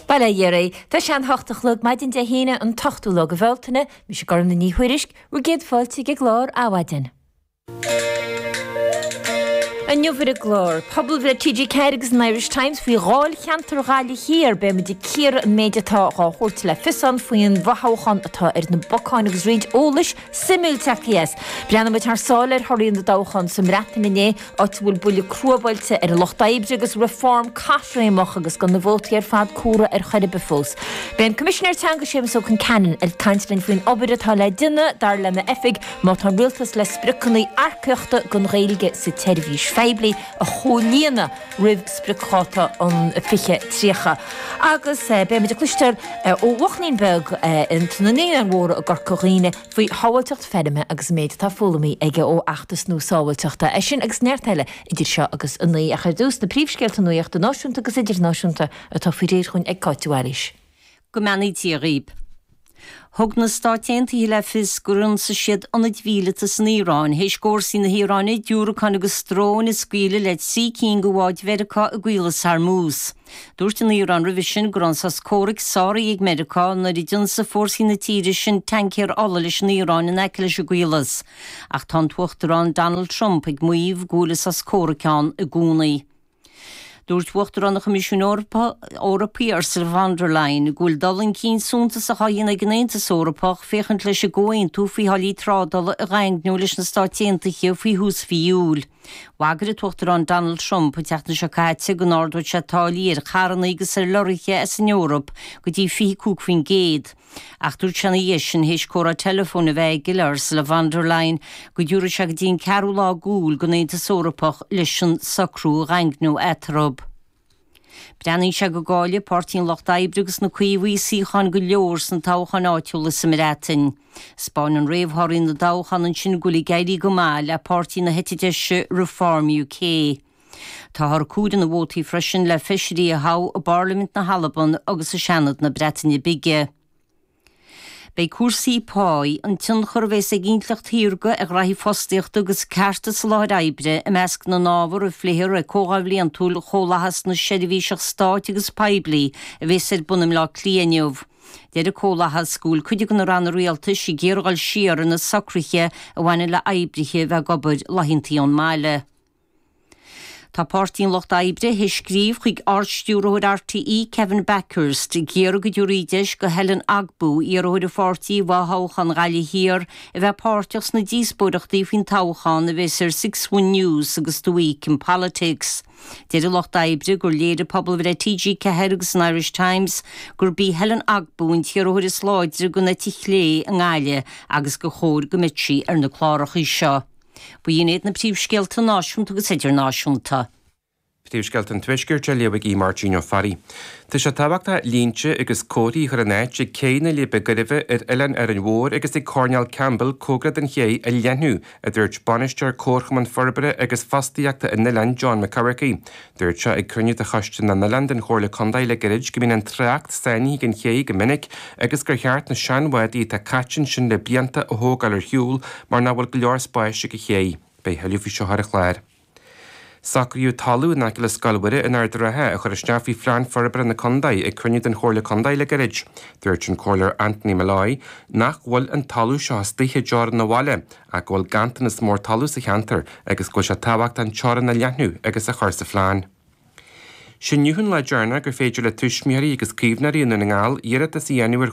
Bail ó Dhia oraibh, tá sé a hocht a chlog maidin Dé hAoine an t-ochtú lá de Bhealtaine, mise Gormfhlaith Ní Thuairisg, bhur gcéad fáilte ag an gclár Adhmhaidin. Inniu ar an gclár, pobalbhreith TG4 agus an Irish Times faoi dháilcheantar Ghaillimh Thiar, beimid ag cíoradh an méid atá dhá thabhairt le fios ann faoin bhfothoghchán atá ar na bacáin agus roinnt eolais suimiúil ag teacht as. Breathnóidh muid thar sáile ar thorthaí na dtoghchán sa mBreatain inné, áit a bhfuil buille crua buailte ar an Lucht Oibre agus Reform caithréimeach agus gan na vótaí ar fad comhairthe ar chor ar bith fós. Beidh an Coimisinéir Teanga Séamas Ó Concheanainn ag caint linn faoin obair atá le déanamh, dar lena oifig, má tá an Rialtas le spriocanna earcaíochta don Ghaeilge sa tseirbhís phoiblí. a chomhlíonadh roimh spriocdháta an 2030 agus beidh muid ag cloisteáil ó bhuachaillín beag in sna Naíonáin Mhóra i gCorca Dhuibhne faoi shábháilteacht feirme agus an méid atá foghlamtha aige ó fheachtas nua sábháilteachta. É sin agus neart eile idir seo agus a naoi ach ar dtús, na príomhscéalta nuachta náisiúnta agus idirnáisiúnta atá faoi réir dhúinn ag Cáit de Bhailís. Go mbeannaí Dia dhaoib. Thug na Stáit Aontaithe le fios gur ionsaigh siad ionaid mhíleata san Iaráin théis d'fhórsaí na hIaráine diúracáin agus dróin a scaoileadh le trí cinn de bháid Mheiriceá i gCaolas Hormuz. Dúirt an Iaráin roimhe sin go raibh an sos comhraic sáraithe ag Meiriceá nuair a d'ionsaigh fórsaí na tíre sin taincéir ola leis an Iaráin in aice leis an gCaolas. Ach tá an tUachtarán Donald Trump ag maíomh go bhfuil an sos comhraic ann i gcónaí. Dúirt Uachtarán an Choimisiúin Eorpaigh Ursula von der Leyen go bhfuil dul chun cinn suntasach á dhéanamh ag an Aontas Eorpach féachaint leis an gcomhaontú faoi tháillí trádála a dhaingniú leis na Stáit Aontaithe faoi thús mhí Iúil. Bhagair an tUachtarán Donald Trump an tseachtain seo caite go n-ardódh sé táillí ar charranna agus ar lorraithe as an Eoraip go dtí 25%. Ach dúirt sé ina dhiaidh sin, théis comhrá teileafóin a bheith aige le Ursula von der Leyen, go dtabharfadh sé go dtí an ceathrú lá d'Iúil don Aontas Eorpach leis an socrú a dhaingniú eatarthu. Breathnaíonn sé go gcaillfidh Páirtí an Lucht Oibre agus na Caomhaigh suíocháin go leor sna toghcháin áitiúla sa mBreatain. 'Speáineann réamhthorthaí na dtoghchán ansin go bhfuil ag éirí go maith le páirtí na heite deise Reform UK. Táthar ag comhaireamh na vótaí freisin le feisirí a thoghadh i bParlaimint na hAlban agus i Seanad na Breataine Bige. Beidh cúrsaí páí, an tionchar a bheas ag intleacht shaorga ar ghraithí fostaíochta agus cearta sa láthair oibre i measc na n-ábhar a phléifear ag Comhdháil Bhliantúil Chomhlachas na Seirbhíseach Stáit agus Poiblí a bheas ar bun i mBleá Cliath inniu. Deir an Comhlachas go bhfuil cuid de na Ranna Rialtais ag iarraidh a ghoil siar ar na socruithe a bhaineann le oibrithe a bheith ag obair laethantaí ón mbaile. Tá Páirtí an Lucht Oibre th'éis scríobh chuig Ard-Stiúrthóir RTÉ Kevin Bakhurst ag iarraidh go dtiúrfaí deis do Helen Ogbu, iarrthóir an pháirtí i bhfo-thoghchán Ghaillimh Thiar, a bheith páirteach sna díospóireachtaí faoin toghchán a bhéas ar Six One News agus The Week in Politics. Deir an Lucht Oibre gur léirigh pobalbhreith TG4 agus an Irish Times gurb í Helen Ogbu an t-iarrthóir is láidre den eite chlé i nGaillimh agus gur chóir go mbeadh sí ar na cláracha seo. Ba shin iad na príomhscéalta náisiúnta agus idirnáisiúnta. Príomhscéalta an Tuaiscirt á léamh ag Aodh Máirtín Ó Fearraigh. Tá sé tábhachtach línte agus comharthaí a chur in áit ag céidh na Leidhbe Gairbhe ar Oileán Árainn Mhór agus ag Coirnéal Campbell comhgarach don chéidh a leathnú, a dúirt Bainisteoir Comharchumann Forbartha agus Fostaíochta an oileáin, John McCafferty. Dúirt sé ag cruinniú de Choiste na nOileán den Chomhairle Contae le gairid go mbíonn an trácht sáinnithe ag an chéidh go minic agus gur cheart na seanbhádaí atá caite ansin le blianta a thógáil ar shiúl mar nach bhfuil go leor spáis ag an chéidh. Beidh a thuilleadh faoi seo ar an chlár. Socraíodh talamh in aice le Scoil Mhuire in Ard a' Rátha a chur isteach faoi phlean forbartha na contae ag cruinniú den Chomhairle Contae le gairid. Dúirt an Comhairleoir Anthony Molloy nach bhfuil an talamh seo istigh i dteorainn an bhaile ach go bhfuil ganntanas mór talaimh sa cheantar agus go bhfuil sé tábhachtach an teorann a leathnú agus a chur sa phlean. Is é inniu an lá deireanach gur féidir le tuismitheoirí agus caomhnóirí i nDún na nGall iarratas a dhéanamh ar